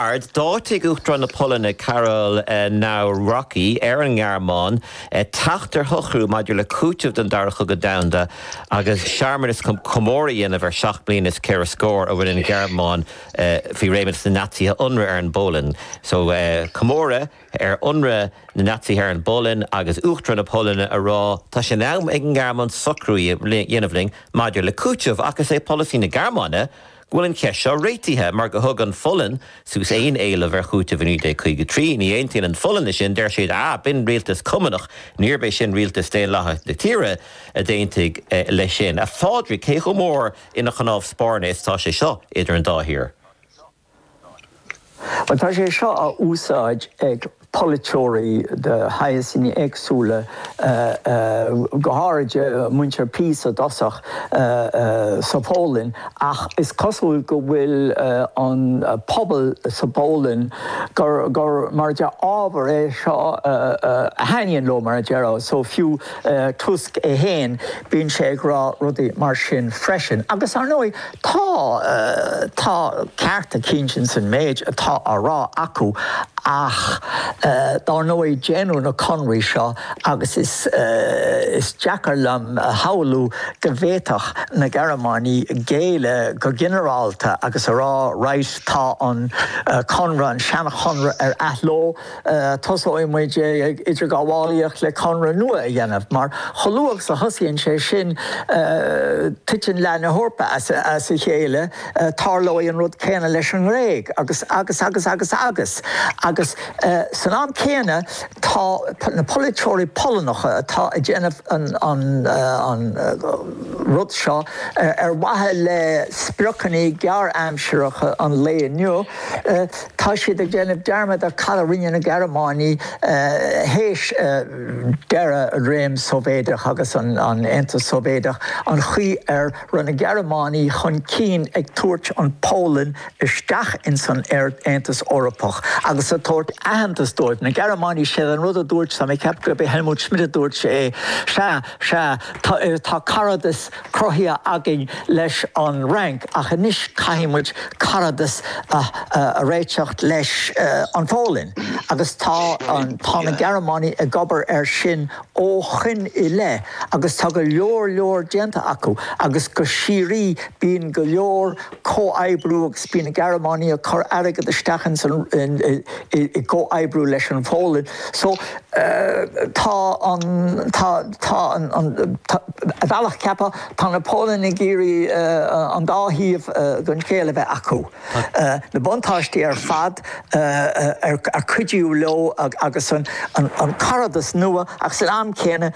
D'áitigh Uachtarán na Polainne Karol Nawrocki ar an nGearmáin teacht ar shocrú maidir le cúiteamh don Dara Cogadh Domhanda agus searmanas chun comóradh a dhéanamh ar sheacht mbliana is ceithre scór ó rinne an Ghearmáin faoi réimeas na Naitsithe ionradh ar an bPolainn. So comóradh ar ionradh na Naitsithe ar an bPolainn agus Uachtarán na Polainne ag rá tá sé in am ag an nGearmáin socrú a dhéanamh linn maidir le cúiteamh ach is é polasaí na Gearmáine go bhfuil an cheist seo réitithe mar gur thug an Pholainn suas aon éileamh ar chúiteamh i 1953. Ní aontaíonn an Pholainn leis sin, deir siad, ah, b'in rialtas cumannach, níorb é sin rialtas daonlathach na tíre a d'aontaigh leis sin. A Phádraig, cé chomh mór ina chnámh spairne is atá sé seo idir an dá thír? Bhuel, tá sé seo á úsáid ag polaiteoirí de shaghais éagsúla, go háirithe muintir PiS i dtosach, sa Pholainn ach is cosúil go bhfuil an pobal sa bPolainn, gur ábhar é seo a thaitníonn leo, mar a déarfá. So fiú Tusk é féin, bíonn sé ag rá rudaí mar sin freisin. Agus, ar ndóigh, Tá, tá ceart cinnte ins an méid atá á rá acu ach dár ndóigh déanadh na conraí seo agus is, is deacair liom a shamhlú go bhféadfadh na Gearmánaigh géilleadh go ginearálta agus a rá right tá an conradh, an seanchonradh ar athló. Tosóidh muid ag idirghabhálaíocht le conradh nua a dhéanamh mar chomh luath agus a thosaíonn sé sin titeann leath na hEorpa as a chéile, tarlóidh an rud céanna leis an nGréig agus, agus, agus, agus, agus. Agus san am céanna tá na polaiteoirí Polannacha atá ag déanamh an, an rud seo ar mhaithe le spriocanna gearr-aimsireacha an lae inniu, Tá siad ag déanamh dearmad ar cad a rinne na Gearmánaigh théis deireadh an réim Sóivéideach agus an Aontas Sóivéideach, an chaoi ar raibh na Gearmánaigh chun cinn ag tabhairt an Pholainn isteach ins an Aontas Eorpach agus ag tabhairt aitheantas dóibh. Na Gearmánaigh, sé an rud a dúirt, tá mé ag ceapadh gurb é Helmut Schmidt a dúirt é, sea, sea, tá caradas, cruthaithe againn leis an Fhrainc ach anois caithfidh muid caradas a réiteach leis an Pholainn agus tá, tá na Gearmánaigh ag obair air sin ó shoin i leith agus tá go leor leor déanta acu agus go síoraí bíonn go leor comhoibriú agus bíonn na Gearmánaigh ag cur airgead isteach ins an i gcomhoibriú leis an Pholainn so tá an tá tá an an a bhealach ceapaim tá na Polannaigh ag iarraidh an dá thaobh den scéal a bheith acu na buntáistí ar fad an cuidiú leo agus an an cairdeas nua ach san am céanna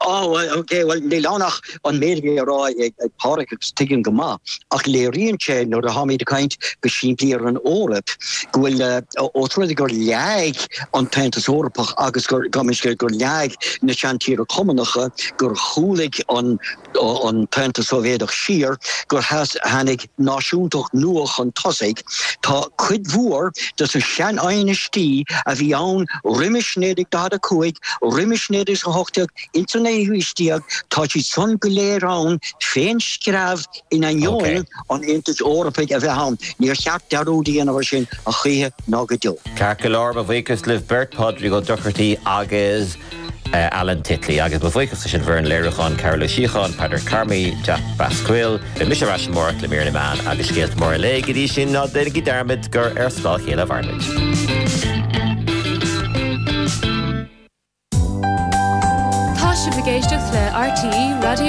Á, bhuel, okay, bhuel, níl ann ach an méid atá á rá ag Páraic agus tuigim go maith ach léiríonn sé nuair a tháimid ag caint go simplí ar an Eoraip go bhfuil ós rud é gur leag an tAontas Eorpach agus gur, gabh mo leithscéal, gur leag na seantíortha cumannacha, gur chúlaigh an tAontas Sóivéadach siar, gur tháinig. náisiúntacht nua chun tosaigh, tá cuid mhór des na sean-aighnistí a bhí ann roimis 1945, roimis 1918, insan naoú haois déag, tá siad san go léir ann fén screamh in ainneoin an Aontais Eorpaigh a bheith ann. Níor cheart dearúd a dhéanamh ar sin, choíche ná go deo. Ceart go leor, mo bhuíochas libh beirt, Pádraig Ó Dochartaigh agus. Alan Titley. Agus mo bhuíochas leis an bhfoireann léiriúcháin, Cárthach Ó Síocháin, Peadar Carmody, Jack Basquel. Beidh mise ar ais amárach le mír na meán agus scéalta móra an lae. Go dtí sin, ná déanaigí dearmad gur ar scáth a chéile a mhaireann muid. Tá sibh ag éisteacht le RTÉ Raidió na.